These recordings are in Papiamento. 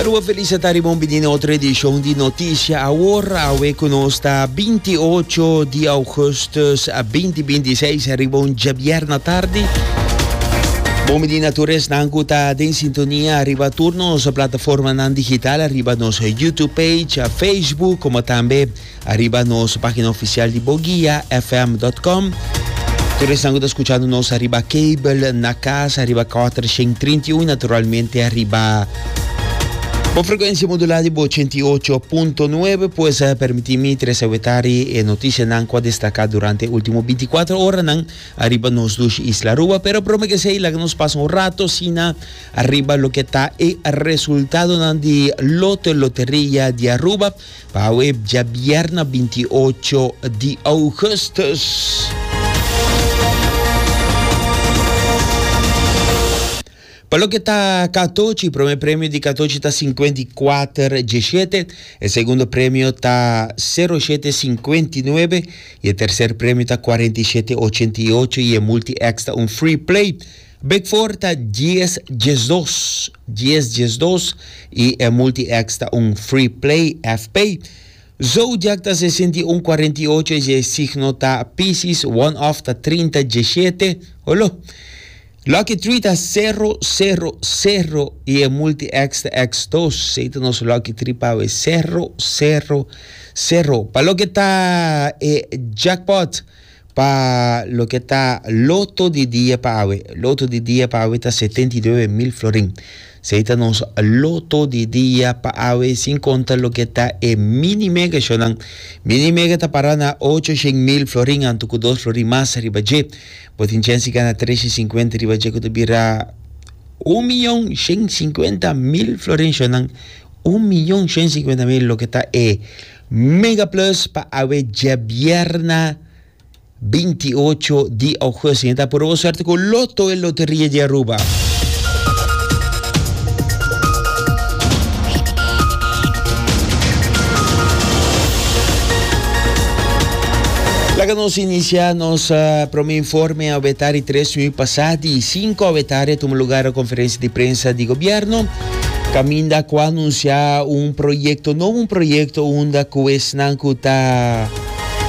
Rua Felice ta ribon bini na otro edishon di Noticia Awor. Awe ku nos ta 28 di Augustus 2026. Ribon djabier na tardi. Bon bini na tur esnan ku ta den sintonia riba tur nos plataformanan digital, riba nos YouTube page, Facebook, komo tambe. Ariba nos pagina oficial di boguiafm.com. Tur esnan cu ta scuchando nos ariba cable, na cas, ariba Carter 131 y naturalmente ariba Bo frecuencia modulada di Bo 88.9 pues permiti mi trece wetari e noticianan cu a destaca durante e ultimo binticuatro oranan ariba nos dushi Isla Aruba. Pero prome que esey laga nos pasa un rato asina ariba loke ta e resultadonan di Loto Loteria di Aruba. Pa awe djabièrna binti ocho di ougùstùs, pa loke ta katochi, promé premio di katochi ta sinkuenta i kuater djeshete, e segundo premio ta sero shete sinkuenta i nuebe, i e terser premio ta kuarenta i shete ochenta i ocho, i e multi-X ta un free play. Bigfor ta dies diesdos, dies diesdos, y e multi-X ta un free play, FP. Zodiak ta sesinti un cuarenta y ocho y e signo ta Piscis, one off ta trinta diesiete, Holo. Lucky tree ta cero, cero, cero y e multi-X ta X dos, esey ta nos lucky tree pa awe, cero, cero, cero. Pa loke ta e jackpot. Pa loke ta loto di dia pa awe, loto di dia pa awe ta setenta i nuebe mil florin. Sei ta nos loto di dia pa awe sin konta loke ta e mini mega shownan. Mini mega ta para na ocho shen mil florin anto ku dos florin mas riba dje. Bo tin chens di gana tres shen sinkuenta riba dje ku ta bira un miyon shen sinkuenta mil florin shownan. Un miyon shen sinkuenta mil loke ta e. Megaplus pa awe djabièrna binti i ocho di ougust. Yen ta puru bo suerte ku Lotto, e loteria di Aruba. Laga nos inicia nos uh, prome informe awe tari tres nui pasá di cinco awe tari a tuma lugar conferencia di prensa di gobierno. Caminda cu a anuncia un proyecto nobo, un proyecto unda cu esnan cu ta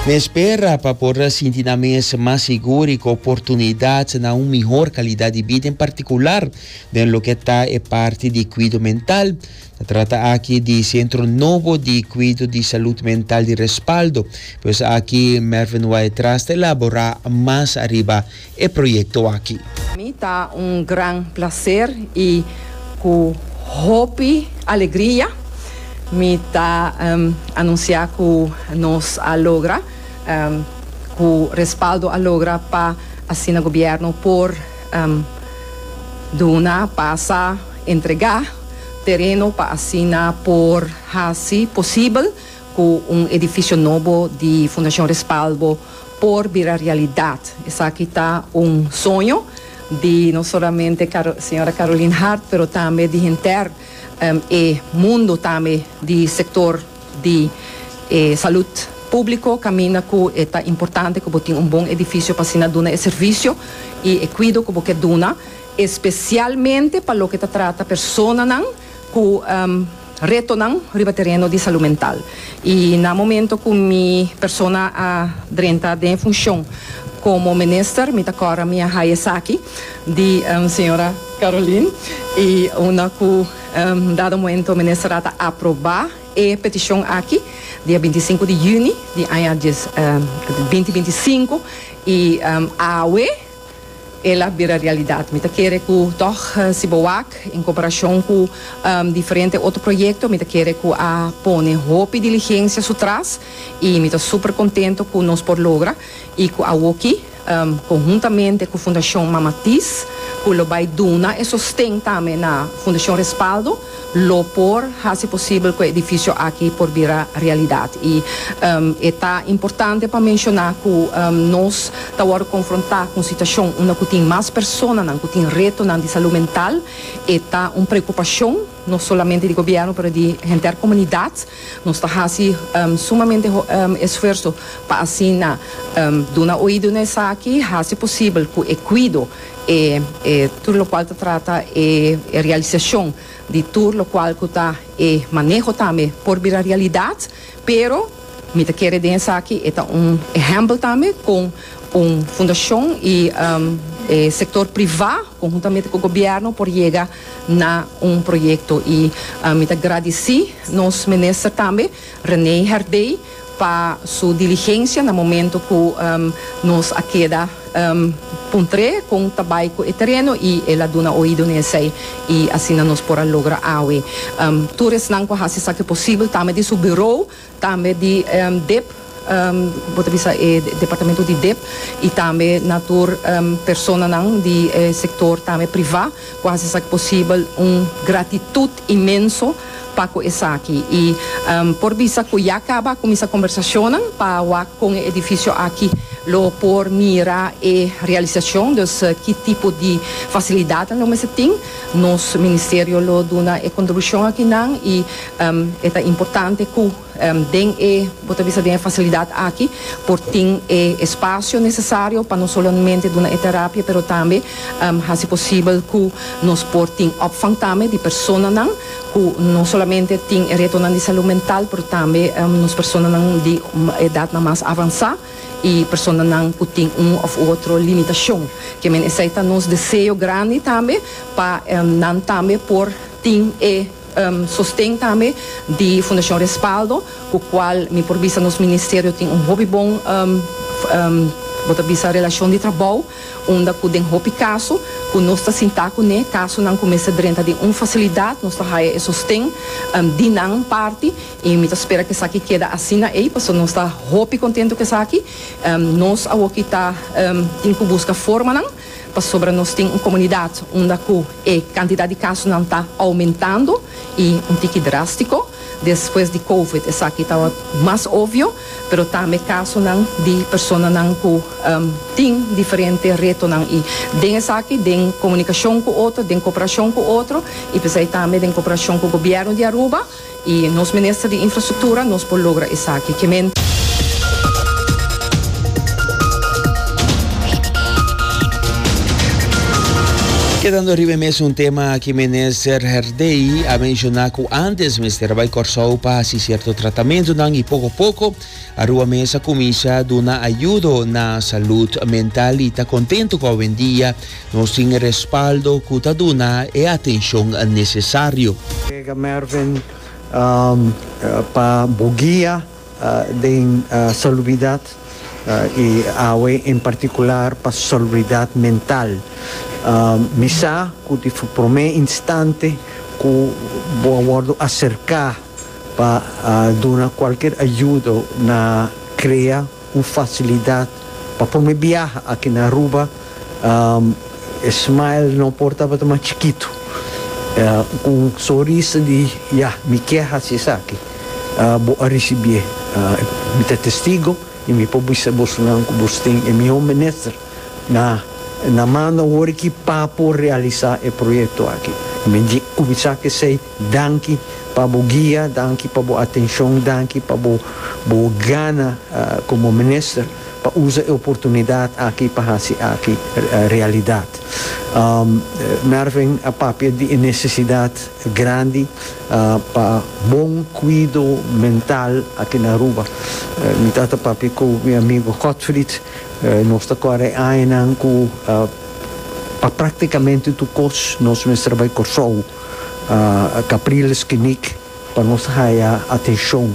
na espera pa por a sinti nan mes mas sigur y cu oportunidad na un mihor calidad di bida, en particular den loke ta e parti di cuido mental. Ta trata aki di centro nobo di cuido di salud mental di Respaldo. Pues aki Mervin Wyatt Tras ta elabora mas ariba e proyecto aki. Mi ta un gran placer y cu hopi alegria mi ta anuncia cu nos a logra cu respaldo a logra pa asina gobierno por duna pasa entrega tereno pa asina por haci posibel cu un edificio nobo di Fundacion Respaldo por bira realidad. Esaki ta un soño di no solamente señora Carolyn Hart pero tambe di henter e mundo tambe di sector di e salud publico caminda cu e ta importante cu bo tin un bon edificio pa asina duna e servicio y e cuido cu bo ke duna especialmente pa loke ta trata personanan cu retonan riba tereno di salud mental. Y na momento cu mi persona a drenta den e funcion como Minister, mi ta cora mi a haya esaki di Sra. Carolien y unda cu un dado momento Minister a ta aproba e peticion aki dia binti i sinku di Juni di aña bintibinti i sinku y awe, El a bira realidad. Mi ta kere cu tog si bo wak, en comparacion cu diferente otro proyecto, mi ta kere cu a pone hopi diligencia su tras y mi ta super contento cu nos por logra y cu awoki, conhuntamente cu Fundacion Mama Thies, cu lo bay duna e sosten tambe na Fundacion Respaldo, lo por hasi posibel ku e edifisio aki por bira realidat. I e ta importante pa menshoná ku nos ta wòrdu konfrontá ku un situashon unda ku tin mas personanan ku tin retonan di salú mental. E ta un preokupashon no solamente di gobièrnu pero di henter komunidat. Nos ta hasi sumamente esfuerso pa asina duna oído na esaki, hasi posibel ku e kuido e e tur lokual ta trata e e realisashon di tur lokual ku ta e maneho tambe por bira realidat pero mi ta kere den esaki e ta un ehèmpel tambe kon un fundashon i e sektor privá konhuntamente ku gobièrnu por yega na un proyekto i mi ta gradisí nos minister tambe. René Herdey pa su diligencia na momento cu nos a keda puntre con ta bay cu e tereno y el a duna oido na esey y asina nos por a logra awe tur esnan cu a haci esaki posible tambe di su bureau tambe di dep bo ta bisa e departamento di dep y tambe na tur personanan di e sector tambe priva cu a haci esaki posible un gratitud inmenso. pa cu esaki y por bisa cu ya caba a cuminsa conversacionnan pa wak con e edificio aki lo por mira e realisacion, dus ki tipo di facilidadnan lo mester tin, nos Ministerio lo duna e contribucion aki nan y e ta importante cu. Den e, bo ta bisa den e fasilidat aki por tin e espasio nesesario pa no solamente duna e terapia pero tambe hasi posibel ku nos por tin opvang tambe di personanan ku no solamente tin e retonan di salu mental pero tambe nos personanan di edatnan mas avansá i personanan ku tin un òf otro limitashon. Ke men esei ta nos deseo grandi tambe pa nan tambe por tin e. Sosten tambe di Fundacion Respaldo cu cual mi por bisa nos Ministerio tin un hopi bon bo ta bisa relacion di trabou unda cu den hopi caso cu nos ta sinta cu ne casonan cu mester drenta den un facilidad nos ta haya e sosten di nan parti y mi ta spera cu esaki keda asina ey pasobra nos ta hopi contento cu esaki. Nos awoki ta tin cu busca formanan. pasobra nos tin un komunidat unda ku e kantidat di kasonan ta oumentando i un tiki drástiko. Despues di Covid esaki ta mas obvio, pero tambe kasonan di personanan ku tin diferente retonan. I den esaki, den komunikashon ku otro, den koperashon ku otro i p'esei tambe den koperashon ku gobièrnu di Aruba, Y nos Minister di Infrastructura nos por logra esaki. Ke men. Kedando riba e mes un tema aki Minister Herdey a menciona cu antes mester a bay Corsou pa haci cierto tratamentonan y poco poco Aruba mes a cuminsha duna ayudo na salud mental y ta contento cu awendia Nos tin e respaldo ku ta duna e atenshon nesesario. Brega Mervin pa bo guia den salubridat i awe en partikular pa salubridat mental. Mi sa ku di promé instante ku bo a wòrdu aserká pa duna kualker ayudo na krea Un facilidad pa pone biaha aki na Aruba, e smile no por tabata mas chikitu. Cu un soris di ya, mi kier haci esaki, bo a ricibié. Mi ta testigo y mi por bisa bosonan cu bos tin e miho minister na mano awor aki pa por realiza e proyecto aki. Mi cuminsa cu esey. Danki pa bo guia, danki pa bo atencion, danki pa bo bo gana como minister pa usa e oportunidad aki pa haci aki realidad. Mervin a papia di e necesidad grandi pa bon cuido mental aki na Aruba. Mi ta ta papia cu mi amigo Godfried, nos ta core e añanan cu pa practicamente tur cos nos mester bai Corsou. Capriles Knik pa nos haya atencion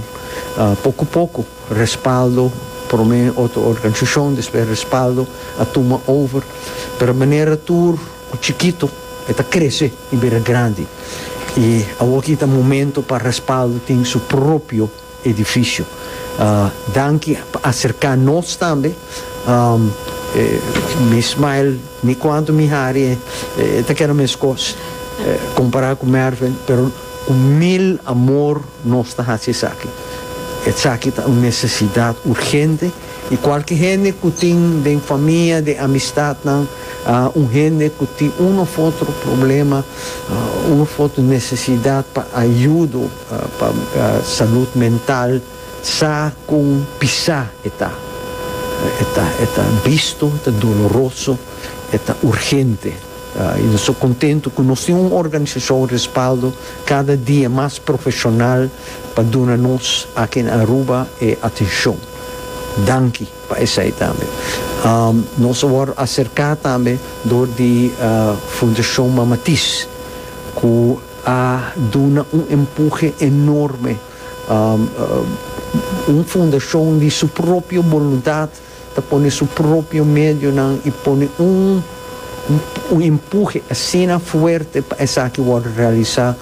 poco poco respaldo prome otro organisacion despues respaldo a tuma over pero manera tur cu chikito e ta crece y bira grandi y awo aki ta momento pa respaldo tin su propio Edificio. Danki pa acerca nos tambe. Mi smile ni cuanto mi hari ta keda mes cos compara cu Mervin pero cu mil amor nos ta haci esaki. Esaki ta un necesidad urgente y cualke hende cu tin den famia, den amistadnan un hende cu tin un of otro problema, un of otro necesidad pa ayudo. Pa salud mental sa con pisa e ta. E ta e ta bisto, e ta doloroso, e ta urgente. Y nos ta contento cu nos tin un organisacion respaldo cada dia mas profesional pa duna nos aki na Aruba e atencion. Danki pa esai tambe. Nos a wor acerca tambe door di Fundacion Mama Tis cu. a duna un empuje enorme. Un fundashon di su propio boluntat ta pone su propio medionan i pone un un empuje asina fuerte pa esaki wòrdu realisá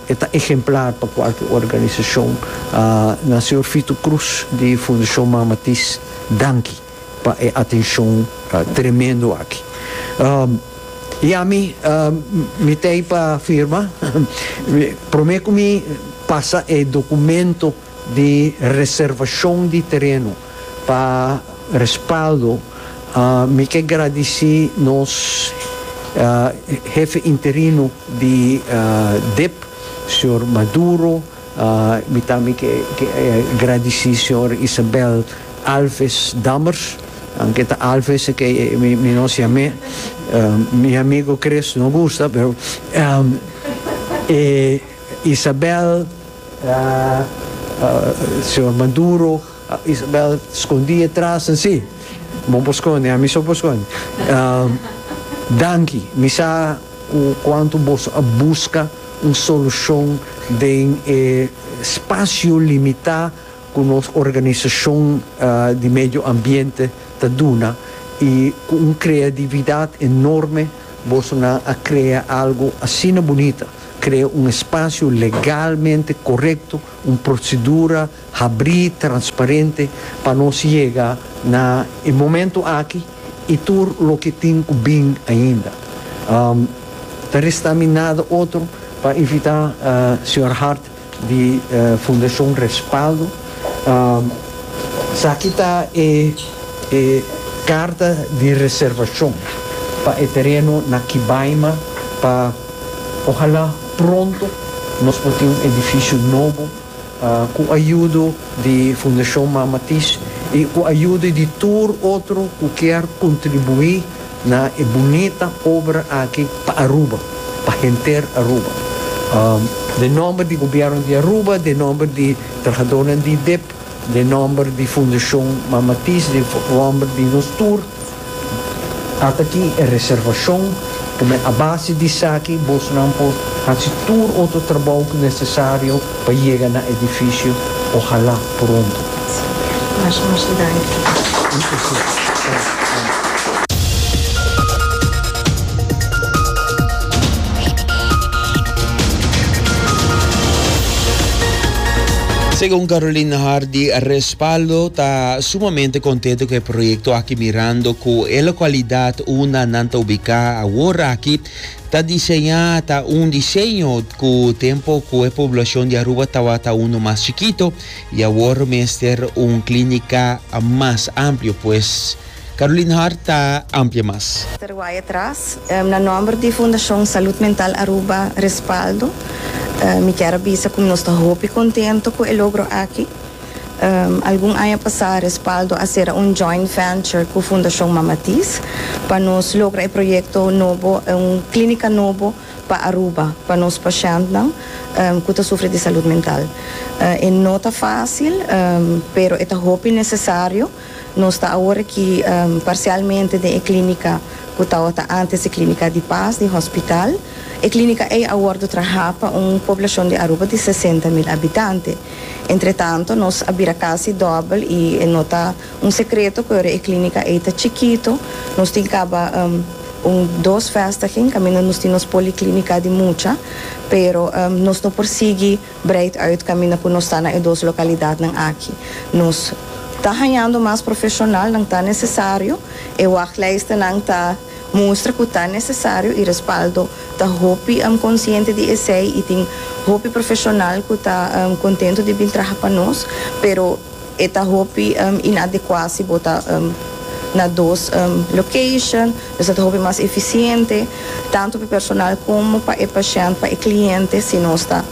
e ta ehemplar pa kualke organisashon. Na Señor Fito Cruz di Fundashon Mama Tis, danki. pa e atencion tremendo aki. Y ami, mi ta ey pa firma, prome cu mi pasa e documento di reservacion di tereno pa respaldo, mi ke gradici nos Hefe Interino di dip, señor Maduro, Mi tambe ke gradisí señor Isabel Alves Dammers, aunke ta Alves ke mi nos yam'é, mi amigo Chris no gusta, pero e Isabel, señor Maduro, Isabel skondí atras nan sí, bo por skonde, ami so por skonde, danki, mi sa kuantu boso a buska. un solucion den e spacio limita cu nos organisacion di medio ambiente ta duna y cu un creadividad enorme bosonan a crea algo asina bunita, crea un espacio legalmente corecto, un procedura habri, transparente pa nos yega na e momento aki. I tur loke tin ku bin ainda. Ta restá mi nada otro pa invitá señor Hart di Fundashon Respaldo. Esaki ta e karta di reservashon pa e tereno na Kibaima pa ohalá pronto nos por tin un edifisio nobo. Ku ayudo di Fundashon Mama Tisch i ku ayudo di tur otro ku kier kontribuí na e bunita obra aki pa Aruba, pa henter Aruba. Den nòmber di Gobièrnu di Aruba, den nòmber di trahadónan di idip, den nòmber di Fundashon Mama Tisch, den nòmber di nos tur. Ata aki e reservashon ku mi a base di esaki bosnan por hasi tur otro trabou ku nesesario pa yega na edifisio ohalá pronto. Much much danki. Segun Caroline Hardy, respaldo ta Sumamente contento cu e proyecto aki mirando cu e localidad unda nan ta ubica awor aki ta diseña ta un diseño cu tempo cu e poblacion di Aruba tabata uno mas chikito y awor mester un clinica mas amplio pues Caroline Hart ta amplia mas. Terwaya tras, na nomber di Fundacion Salud Mental Aruba Respaldo, mi kier a bisa cu nos ta hopi contento cu e logro aki. Algun aña pasá Respaldo a sera un joint venture ku Fundashon Mamatis pa nos logra e proyekto nobo, un klínika nobo pa Aruba pa nos pashèntnan ku ta sufri di salud mental. E no ta fásil pero e ta hopi nesesario. Nos ta awor aki parsialmente den e klínika ku tawata ántes e Klínika di Pas di Hòspital. E klínika ei a wòrdu trahá pa un poblashon di Aruba di sesenta mil abitante. Entretanto, nos a bira kasi dòbel i e no ta un sekreto ku ora e klínika ei ta chikitu. Nos tin kaba un dos vèstiging kaminda nos tin nos poliklínika di mucha, pero nos no por sigui Breid uit kaminda ku nos ta na e dos lokalidatnan aki. Nos ta hañando mas profeshonal, nan ta nesesario, e wachtlijstennan ta mustra ku ta nesesario i respaldo ta hopi konsiente di esei i tin hopi profeshonal ku ta kontentu di bin traha pa nos, pero. E ta hopi inadecuá si bo ta na dos location. Nos lo ta hopi mas eficiente, tanto pa e personal como pa e pashènt, pa e cliente, si nos ta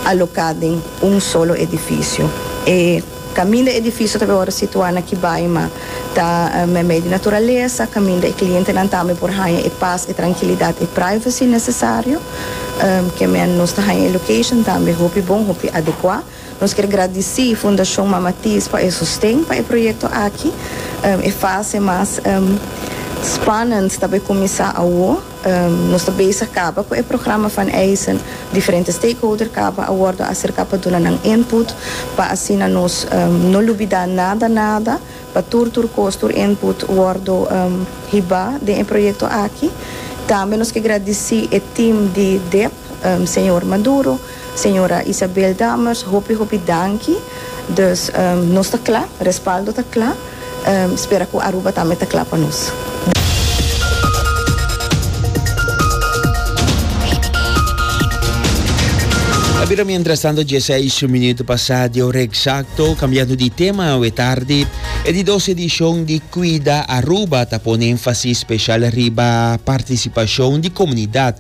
alocá den un solo edificio. E caminda edificio ta awor situá na Kibai, ma ta meimei di naturalesa, caminda e clientenan tambe por haña e pas, e trankilidad, e privacy necesario. Kemen nos ta haña e location tambe hopi bon, hopi adecuá. Nos kier gradisí Fundashon Mama Thies pa e sosten pa e proyekto aki. E fase mas spanend ta bai kuminsá awo. Nos ta bezig kaba ku e programa van Eijzen. Diferente stakeholder kaba a wòrdu aserká pa duna nan input pa asina nos no lubidá nada nada pa tur tur kos, tur input wòrdu hibá den e proyekto aki. Tambe nos ke gradisí e tim di dep, señor Maduro. Señora Isabel Dammers hopi hopi danki dus nos ta cla respaldo ta cla spera cu Aruba tambe ta cla pa nos. A bira mientras tanto dieseis minuto pasa di hora exacto cambiando di tema awe tardi e di dos edicion di Cuida Aruba ta pone énfasis special riba participacion di comunidad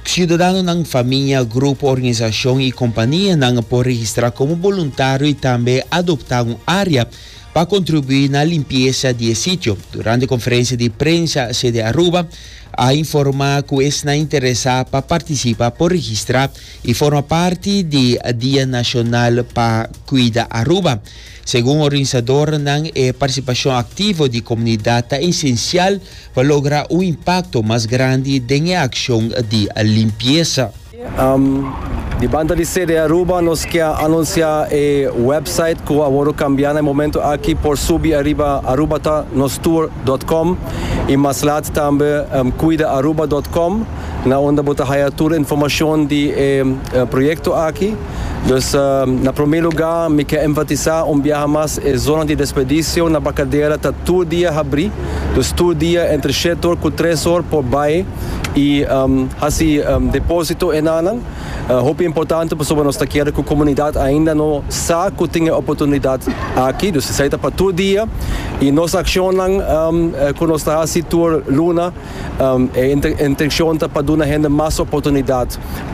Ciudadanonan, famia, grupo, organisacion y companianan por registra como boluntario y tambe adopta un area pa contribui na limpieza di e sitio. Durante conferencia di prensa sede Aruba a informa cu esnan interesa pa participa por registra y forma parti di Dia Nacional pa Cuida Aruba. Segun organisadornan e participacion activo di comunidad ta esencial pa logra un impakto mas grandi den e akshon di limpiesa. Di banda di CDA Aruba nos kia anunsiá e wèpsait ku a wòrdu kambiá na e momentu aki por subi ariba arubatanostouer.com i mas lat tambe cuidaaruba.com na unda bo ta haya tur e informashon di e proyekto aki. Dus na promé lugá mi ke enfatisá un biaha mas e zona di desperdisio na Bacadera ta tur dia habrí, dus tur dia entre shetor ku tres or por bai i hasi depósito e nannan. Hopi importante pasobra nos ta kere ku komunidat ainda no sa ku tin e oportunidat aki, dus esei ta pa tur dia i nos akshonnan ku nos ta hasi tur luna, Um, e intencion ta pa duna hende mas oportunidad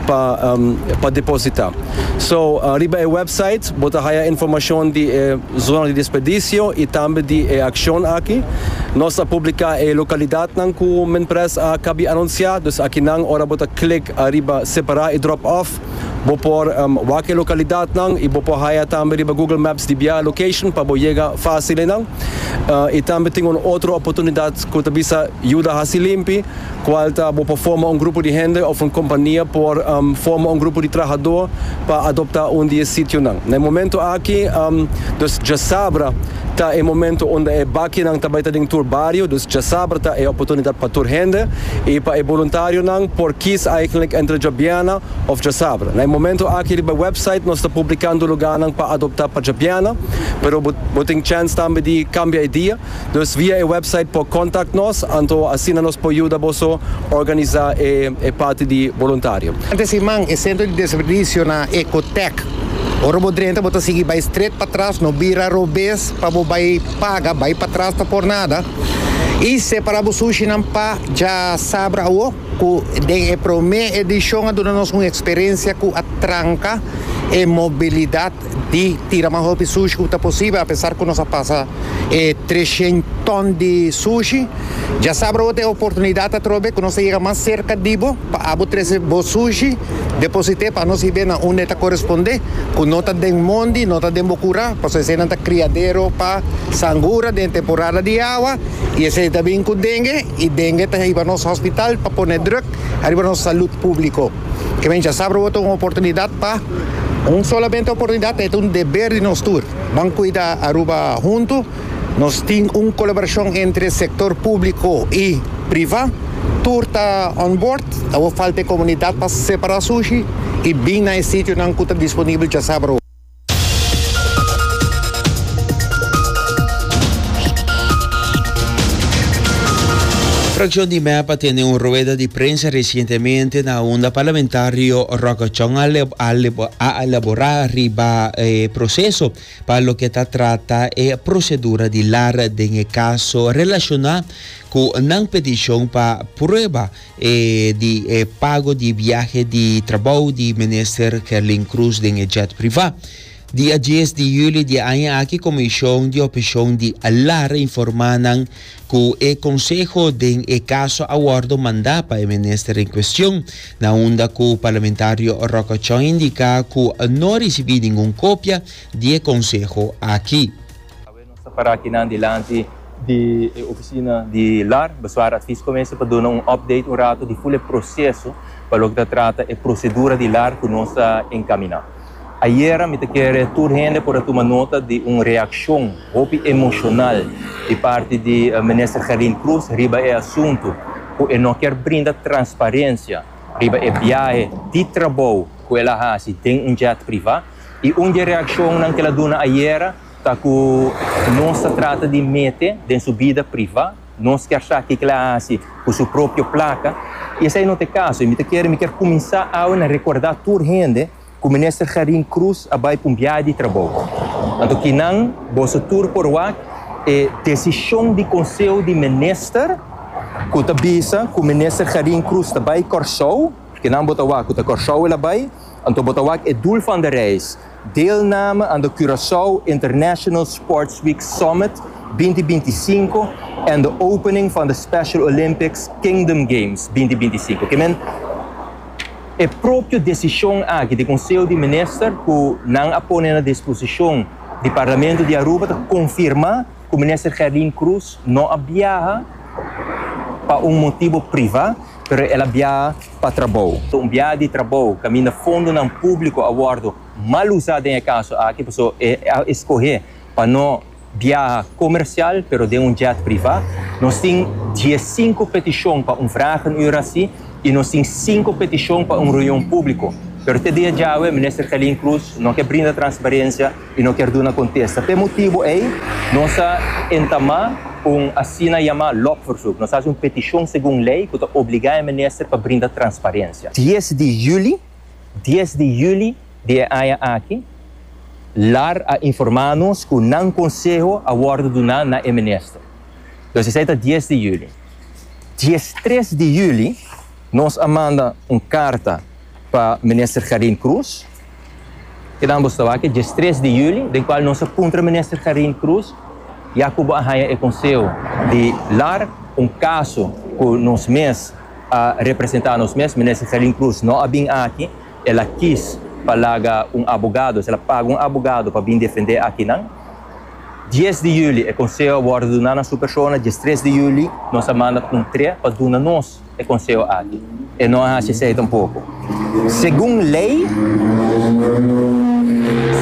pa, um, pa deposita. So, uh, riba e website, bota haya informacion di e zona di despedicio y tambe di e accion aki. Nos a publica e localidad nan cu men pres a cabi anuncia, dus aki nan ora bota click ariba separa y drop off, Bo por wak e lokalidatnan i bo por haya tambe riba Google Maps di biaha location pa bo yega fásil enan. I tambe tin un otro oportunidat ku ta bisa Yuda Hasi Limpi, kual ta bo por forma un grupo di hende òf un kompania por forma un grupo di trahadó pa adoptá un di e sitionan. Na e momentu aki nos dja sabra. Ta e momento unda e bakinan ta bai ta den tur bario, dus djasabra ta e oportunidat pa tur hende i pa e boluntarionan por kies eigenlik entre djobiana of djasabra. Na e momento aki riba e website nos ta publikando luganan pa adopta pa djobiana, pero bo bo tin chèns tambe di kambia e dia, dus via e website por kontakt nos, anto asina nos por yuda boso organisa e e parti di boluntario. Ante siman e sentro di desperdicio na Ecotec Ora bo drenta bo ta sigui bai stret pa tras, no bira robes pa bo bai paga, bai pa tras ta por nada. I separa bo sushinan pa dja sabra awo cu den e prome edicion a duna nos un experencia cu a tranca e mobilidad di tira mas hopi sushi cu ta posibel apesar cu nos a pasa e treshen ton di sushi. Dja sabra awo ta e oportunidad atrobe cu nos ta yega mas cerca di bo. Pa abo trese bo sushi, deposit'é pa nos hib'é na unda e ta korespondé, ku no ta den mondi, no ta den bo kurá, pasobra eseinan ta kriadero pa sangura den e temporada di awa, i esei ta bin ku dengue, i dengue ta hiba nos hospital pa pone druk ariba nos salud públiko. Ke mencha sa probo ta un oportunidat pa, un solamente oportunidat, e ta un deber di nos tur. Ban kuida Aruba huntu. Nos tin un colaboracion entre sector publico y priva. Tur ta on board. Awor falta e comunidad pa separa sushi y bin na e sitionan cu ta disponibel djasabra. Fraccion di mep a tene un rueda di prensa recientemente na unda parlamentario Rockachon a elabora riba e proceso. Pa loke ta trata e prosedura di lar den e kaso relashoná ku nan petishon pa prueba di e pago di biahe di trabou di Minister Kerlin Croes den e jet privá. Dia dies di huli di aña aki Komishon di Opishon di Lar informá nan cu e Conseho den e caso a wordo manda pa e minister en cuestion, na unda cu Parlamentario Rocachoy indica cu no ricibi ningun copia di e conseho aki. Awe nos ta para akinan dilanti di e oficina di lar Besuar Adviescommissie pa duna un update un rato di full e proceso pa loke ta trata e procedura di lar cu nos ta encamina. Ayera mi ta kere tur hende por a tuma nota di un reakshon hopi emoshonal di parti di Minister Gerlin Croes riba e asuntu ku e no kier brinda transparensia riba e biahe di trabou ku el a hasi den un jet privá i un di e reakshonnan ku el a duna ayera ta ku nos ta trata di mete den su bida privá. Nos kersá kiko el a hasi ku su propio plaka, i esei no ta e kaso. I mi ta kere, mi kier kuminsá awe na rekordá tur hende ku Minister Garin Cruz a bai pa un biaha di trabou. Anto kinan, boso tur por wak e desishon di Konseo di Minister ku ta bisa ku Minister Garin Cruz ta bai Kòrsou. Kinan bo ta wak ku ta Kòrsou el a bai, anto bo ta wak e doel van de reis Deelname aan de Curaçao International Sports Week Summit binti binti sinku en de opening van de Special Olympics Kingdom Games binti binti sinku. Ke men e propio decision aki di Conseho di Minister cu nan a pone na disposicion di Parlamento di Aruba ta confirma cu Minister Gerlin Croes no a biaha pa un motibo priva pero el a biaha pa trabou. Tombia di trabou caminda fondonan publico a wordo mal usa den e caso aki paso e a escoge pa no biaha comercial pero den un jet priva. Nos tin diescinco peticion pa un vraag een uur aci y nos tin cinco peticion pa un reunion publico pero te dia djawe Minister Gelin Cruz no ke brinda transparencia i no kier duna kontesta. P'e motibu ei nos a entamá un asina yamá lokverzoek, nos hasi un petishon segun lei ku ta obligá e minister pa brinda transparensia. Dies di juli, dies di juli di e aña aki, lar a informá nos ku nan konseho a wòrdu duná na e minister. Entonces esei ta dies di juli. Dies tres di juli nos a manda un karta pa minister Karin Cruz Kidan bo sta wak e diestres di juli, den kual nos a puntra Minister Carine Cruz ya ku bo a haña e konseo di lar un kaso ku nos mes a representá nos mes. Minister Carine Cruz no a bin aki, el a kis pa laga un abogado, òsèra el a paga un abogado pa bin defendé akinan. Dies di juli e konseo a wòrdu duná na su persona, diestres di juli nos a manda un tre pa duna nos. e konseho aki. E no a hasi esei tampoko. Segun lei,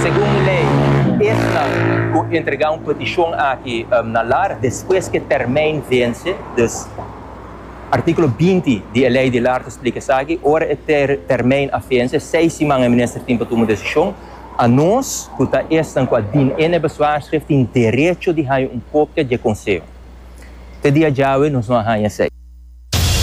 segun lei, esnan ku entregá un petishon aki na lar despues ku e tèrmèin vense, dus artíkulo binti di e lei di lar ta splika esaki, ora e tèrmèin a vense, seis siman e minister tin pa tuma un desishon. Anos ku ta esnan ku a dina e nebezwaarschrif tin derecho di haña un kopia dje konseho. Te di ajawe nos no a haña esei.